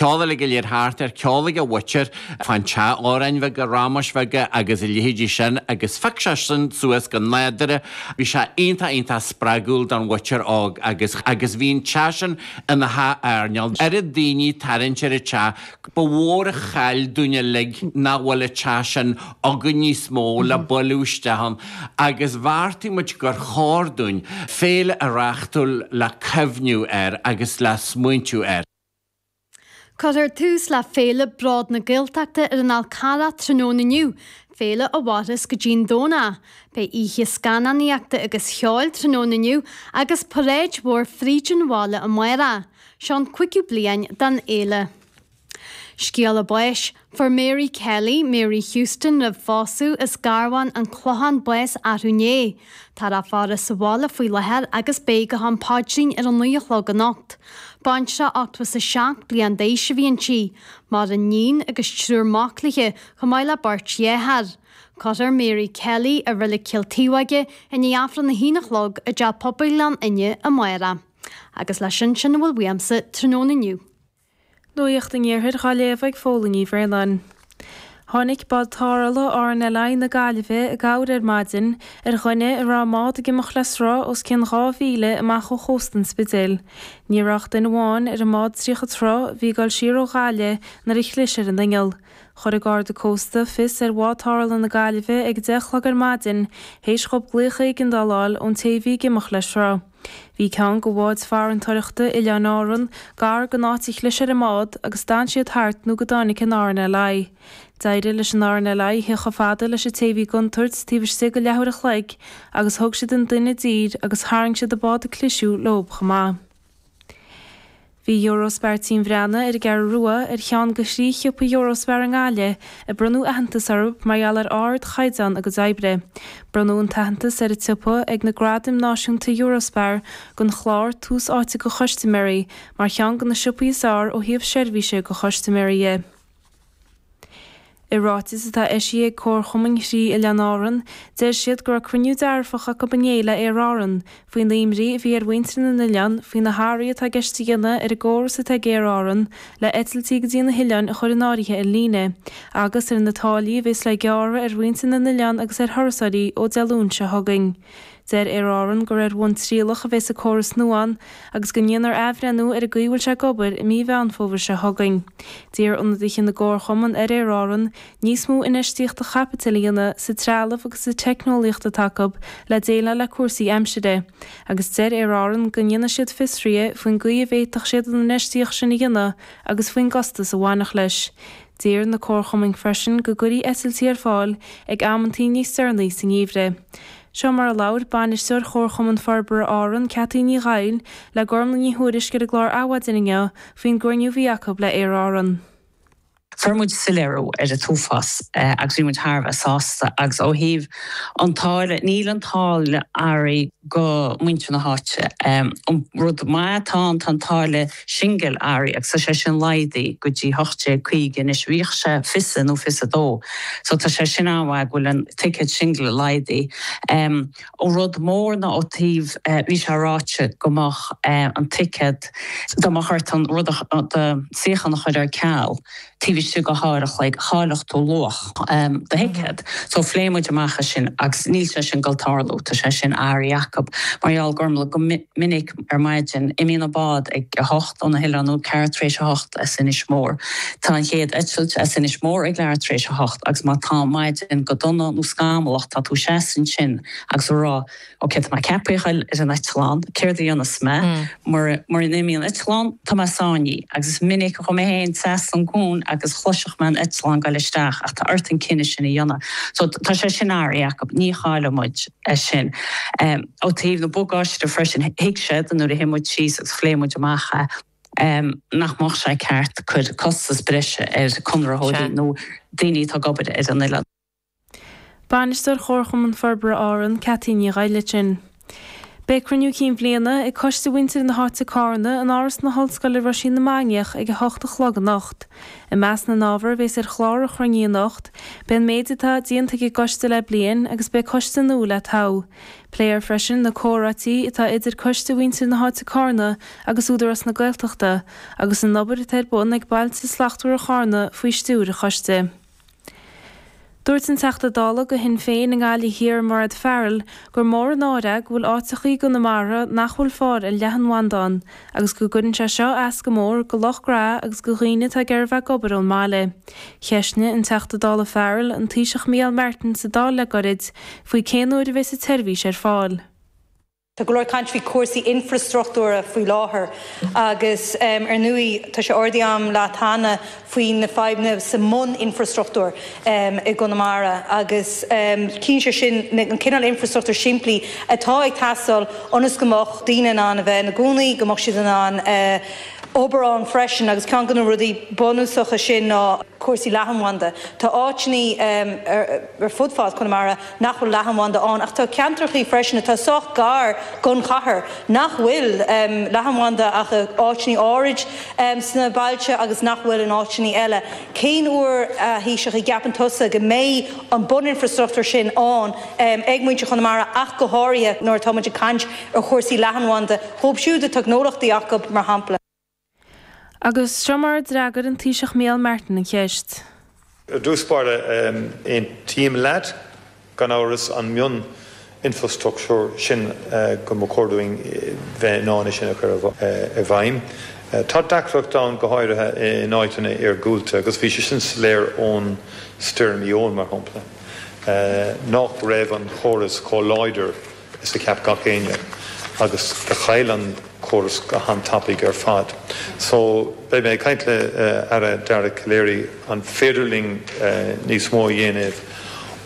Ceol uilig go léir thart air, ceol ag a mhuintir fán teach, amhráin bheaga, rámais bheaga agus a leithéidí sin agus phioc sé sin suas go nádúrtha, bhí sé iontach iontach spreagúil don mhuintir óg agus agus bhí an teach sin ina theach airneáil, oiread daoine ag tarraingt ar an teach, ba mhór an chaill dúinn uilig nach bhfuil an teach sin againn níos mó le bualadh isteach ann agus bheartaigh muid gur chóir dúinn féile a reachtáil le cuimhniú air agus le smaointiú air. Cuirfear tús le Féile Bród na Gaeltachta ar an Fhál Carrach tráthnóna inniu, féile a mhairfeas go dtí an Domhnach. Beidh oíche scannánaíochta agus cheoil tráthnóna inniu agus paráid mhór fríd an bhaile amárach. Seo an cúigiú bliain den fhéile. Scéala báis, Fuair Mary Kelly, Mary Houston roimh phósadh, as Garbhán, An Clochán, bás arú inné. Tá a faire sa bhaile faoi láthair agus beidh go ham paidrín ar a naoi a chlog anocht. Baintreach ochtó is a seacht bliain d'aois a bhí inti. Maireann níon agus triúr mac léi, chomh maith le beirt dheartháir. Cuirfear Mary Kelly i Reilig Chill Taobhóige i ndiaidh aifreann a haon a chlog i dteach pobail Ghleann Fhinne, amárach. Agus le sin sin a bhfuil uaimsa tráthnóna inniu. Nuacht an Iarthair dhá léamh ag Fódhla Uí Bhraonáin. Tháinig bád tarrthála RNLI na Gaillimhe i gcabhair ar maidin ar dhuine a raibh a mbád ag imeacht le sruth os cionn dhá mhíle amach ó chósta an Spidéil. Ní raibh ach duine amháin ar an mbád tríocha troigh a bhí ag dul siar ó Ghaillimh nuair a chlis ar an inneall. Chuir an Garda Cósta fios ar bhád tarrthála na Gaillimhe ag a deich a chlog ar maidin théis dhóibh glaoch éigeandála a fháil ón té a bhí ag imeacht le sruth. Bhí ceann de bháid farantóireachta Oileáin Árann gar don áit ar chlis ar an mbád agus d'fhan siad thart nó go dtáinig an RNLI. D'éirigh leis an RNLI a thíocht chomh fada leis an té a bhí i gcontúirt taobh istigh de leathuair an chloig agus thug siad an duine i dtír agus tharraing siad an bád a cliseadh leob chomh maith. Bhí Eurospar Tigh an Bhreathnaigh ar an gCeathrú Rua ar cheann de thrí shiopa Eurospar i nGaillimh a bronnadh aitheantas orthu mar gheall ar ardchaighdeán a gcuid oibre. Bronnadh an t-aitheantas ar an tsiopa ag na Gradaim Náisiúnta Eurospar don chlár Tús Áite do Chustaiméirí mar cheann de na siopaí is fearr ó thaobh seirbhíse do chustaiméirí de. I ráiteas atá eisithe ag comharchumainn thrí Oileán Árann, deir siad go raibh cruinniú dearfach acu inné le Aer Árann, faoin imní a bhí ar mhuintir na n-oileán, faoi na hathruithe atá i gceist a dhéanamh ar an gcóras atá ag Aer Árann le eitiltí go dtí na hoileáin a chur in áirithe ar líne, agus ar na táillí a bheas le gearradh ar mhuintir na n-oileán agus ar thurasóirí ó Dé Luain seo chugainn Deir Aer Árann gur ar bhonn trialach a bheas an córas nua ann agus go ndéanfar athbhreithniú ar an gcaoi a bhfuil sé ag obair i mí Mheán Fómhair seo chugainn. D'iarr ionadaithe na gcomharchumann ar Aer Árann níos mó infheistíochta chaipitil a dhéanamh sa trealamh agus sa teicneolaíocht atá acu le déileáil le cúrsaí aimsire agus deir Aer Árann go ndéanfaidh siad fiosruithe faoin gcaoi a bhféadfadh siad an infheistíocht sin a dhéanamh agus faoin gcostas a bhainfeadh leis. D'iarr na comharchumainn freisin go gcuirfí eitiltí ar fáil ag amantaí níos deireanaí sa ngeimhreadh. Seo mar a labhair Bainisteoir Chomharchumann Forbartha Árann, Cathy Ní Ghoill, le Gormfhlaith Ní Thuairisg ar an gclár Adhmhaidin inniu faoin gcruinniú a bhí acu le Aer Árann. Fuair muid soiléiriú ar an t-uafás agus bhí muid thar a bheith sásta agus ó thaobh an táille, níl an táille athraithe go muintir na háite. An rud maith atá ann, tá an táille. singil athraithe agus tá sé sin laghdaithe go dtí 1850 anois bhíodh sé fiche is a nó fiche is a 2 so tá sé sin an-mhaith go bhfuil an ticéad singil laghdaithe em ó rud mór ná ó taobh eh bhí sé ráite go mbeadh eh an ticéad dá mbeadh ort an rud a do shuíochán a chur ar ceal taobh istigh de dhá uair a chloig, chaillfeadh tú luach do thicéad. So phléigh muid amach é sin agus níl sé sin ag goil tarlú. Tá sé sin athraithe acub mar gheall Gormfhlaith go minic ar maidin imíonn an bád ag a hocht óna hoileáin nó ceathrú tar éis a hocht as Inis Mór. Tá an chéad eitilt as Inis Mór ag leathuair tar éis a hocht agus má tá an maidin go dona nó scamallach tá tú seasamh ansin agus a rá Ok, tá mé ceaptha a ghoil ar an eitleán, céard a dhéanfas mé mura n-imíonn an eitleán? Tá mé sáinnithe agus is minic a chuaigh mé féin trasna an cuan agus chloisfeadh mé an eitleán ag goil isteach ach tá ort an cinneadh sin a dhéanamh. So, tá sé sin athraithe acub, ní chaillfidh muid é sin. Ó taobh na bagáiste de freisin, thuig siad nuair a shuigh muid síos agus phléigh muid amach é nach mbeadh sé ceart cuir costas breise ar conraitheoirí nó daoine atá ag obair ar an oileán. Bainisteoir Chomharchumann Forbartha Árann, Cathy Ní Ghoill ansin. Beidh Cruinniú Cinn Bhliana ag Coiste Mhuintir na hÁite Carna in Áras na hOllscoile Roisín na Mainiach ag 8 a chlog anocht. I measc na n-ábhar a bhéas ar chlár an chruinnithe anocht beidh an méid atá déanta ag an gcoiste le bliain agus beidh coiste nua le toghadh. Pléifear freisin na comhráití atá idir Coiste Mhuintir na hÁite Carna agus Údarás na Gaeltachta agus an obair atá ar bun ag Bailte Slachtmhara Charna faoi stiúir an choiste. Dúirt an Teachta Dála do Shinn Féin i nGaillimh Thiar Mairéad Farrell gur mór an náire go bhfuil áiteacha i gConamara nach bhfuil fáil ar leathanbhanda ann agus go gcuireann sé seo as go mór go lucht gnó agus go dhaoine atá ag iarraidh bheith ag obair ón mbaile. Cheistigh an Teachta Dála Farrell an Taoiseach Micheál Martin sa Dáil le gairid faoi cén uair a bheas an tseirbhís ar fáil. Tá go leor caint faoi chúrsaí infrastruchtúra faoi láthair agus ar ndóigh tá sé ardaithe agam leat cheana faoi na fadhbanna sa mbun infrastruchtúr i gConamara agus cinnte is é sin na an cineál infrastruchtúr simplí atá ag teastáil ionas go mbeadh daoine in ann a bheith ina gcónaí, go mbeadh siad in ann obair ann freisin agus ceann go na rudaí bunúsacha sin ná cúrsaí leathanbhanda. Tá áiteanna ar fud fad Chonamara. nach bhfuil leathanbhanda ann ach tá ceantrachaí freisin atá sách gar gon chathair nach bhfuil leathanbhanda ach i áiteannaí áirid sna bailte agus nach bhfuil in áiteannaí eile. Cén uair a Thaoiseach a gceapann tusa go mbeidh an bun infrastruchtúr sin ann ag muintir Chonamara ach go háirithe nuair atá muid ag caint ar chúrsaí leathanbhanda dhóib siúd atá gnólachtaí acu mar shampla. Agus seo mar a d'fhreagair an Taoiseach Micheál Martin an cheist. Ar dtús báire, aontaím leat, gan amhras, an mion infrastructúr sin go mba chóir dúinn bheith in ann é sin a chur i bhfeidhm. Tá deacracht ann go háirithe in áiteanna iargúlta agus bhí sé sin soiléir ón Stoirm Éowyn, mar shampla, nách raibh an chóras chomh láidir. Is a cheap gach éinne agus do chaill an córas go han-tapaidh ar fad. So beidh mé ag caint le Aire Dara Calleary an féidir linn níos mó a dhéanamh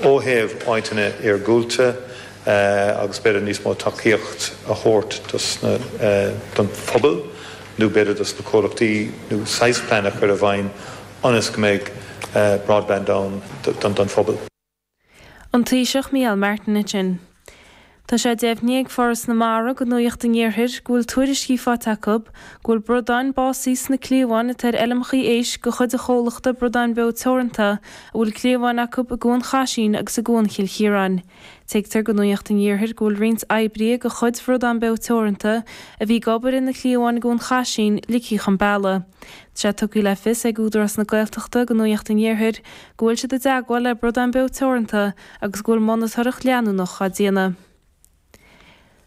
ó thaobh áiteanna iargúlta agus b'fhéidir níos mó tacaíocht a thabhairt dos na, don phobal nó b'fhéidir dos na comhlachtaí nó saghas plean a chur i bhfeidhm ionas go mbeidh broadband ann don phobal. An Taoiseach Micheál Martin ansin. Tá sé deimhnithe ag Foras na Mara go Nuaíocht an Iarthair go bhfuil tuairiscí faighte acu go bhfuil bradáin básaí sna cliabháin atá ar fheilmeachaí éisc de chuid an chomhlachta Bradán Beo Teoranta a bhfuil cliabháin acu i gCuan Chaisín agus i gCuan Chill Chiaráin. Tuigtear go Nuaíocht an Iarthair go bhfuil roinnt oibrithe de chuid Bhradán Beo Teoranta a bhí ag obair ar na cliabháin i gCuan Chaisín ligthe chun bealaigh. Tá sé tugtha le fios ag Údarás na Gaeltachta go Nuaíocht an Iarthair go bhfuil siad i dteagmháil le Bradán Beo Teoranta agus go bhfuil monatóireacht leanúnach á déanamh.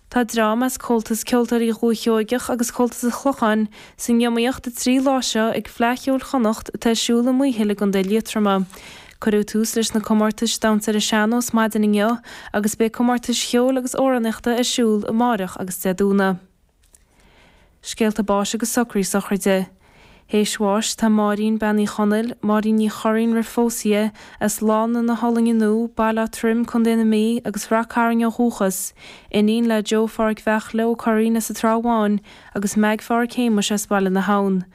Tá dream as Comhaltas Ceoltóirí Dhúiche Sheoigheach agus Comhaltas an Chlocháin san iomaíocht an trí lá seo ag Fleadh Cheoil Chonnacht atá ar siúl i Maothail i gContae Liatroma. Cuireadh tús leis na comórtais damhsa ar an sean-nós maidin inniu agus beidh comórtais cheoil agus amhránaíochta ar siúl amárach agus Dé Domhnaigh. Scéalta báis agus socraí sochraide. Théis bháis tá Máirín Bean Uí Chonaill, Máirín Ní Churraoin roimh phós í, as Lána na hOllainne innú, Baile Átha Troim, Co. na Mí, agus Rath Cairn ó dhúchas, iníon le Joe Phádraic Bheachley Ó Curraoin as an Trá Bháin agus Meaig Phádraic Shéamuis as Baile na hAbhann.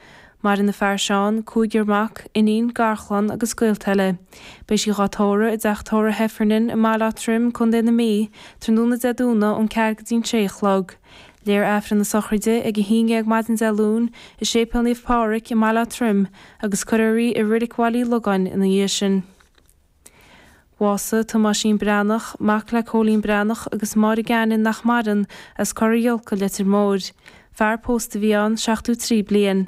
Maireann a fear Seán, cúigear mac, iníon, garchlann agus gaolta eile. Beidh sí dhá tórradh i dTeach Tórraimh Heffernan i mBaile Átha Troim, Co. na Mí, tráthnóna Dé Domhnaigh ón ceathair go dtí'n sé a chlog. Léifear Aifreann na sochraide ag a haon dhéag maidin Dé Luain i Séipéal Naomh Pádraig i mBaile Átha Troim agus cuirfear í i Rilic Bhaile Uí Logáin ina dhiaidh sin. Bhásaigh Tomáisín Breathnach, mac le Cóilín Breathnach agus Máire Gagnon nach maireann, as Corra Bhuaile, Leitir Móir. Fear pósta a bhí ann, 73 bliain.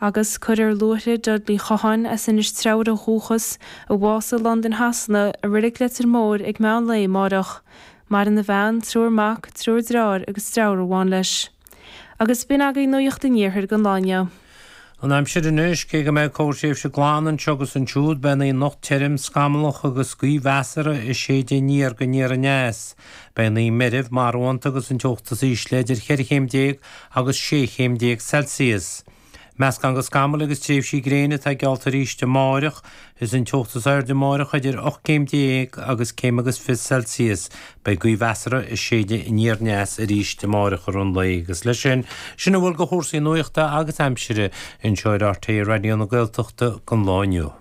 Agus cuirfear luaithre Dudley Chotháin as Inis Treabhair ó dhúchas, a bhásaigh i Londain Shasana, i reilig Leitir Móir ag meán lae amárach. Maireann a bhean, triúr mac, triúr dreár agus dreabhar amháin leis. Agus b'in agaibh nuacht an iarthair don lá inniu. An aimsir anois, cé go mbeidh corrthréimhse glan anseo agus ansiúd, beidh an oíche anocht tirim, scamallach agus gaoth mheasartha ag séideadh aniar go aniar aneas. Beidh an oíche meirbh marbhánta agus an teocht is ísle idir cheithre chéim déag agus sé chéim déag Celsius. Meascán de scamaill agus tréimhsí gréine atá geallta arís amárach. Is an teocht is airde amárach idir ocht gcéim déag agus céim agus fiche Celsius. Beidh gaoth mheasartha ag séideadh aniar aneas arís amárach i rith an lae agus leis sin, sin a bhfuil de chúrsaí nuachta agus aimsire anseo ar RTÉ Raidió na Gaeltachta don lá inniu.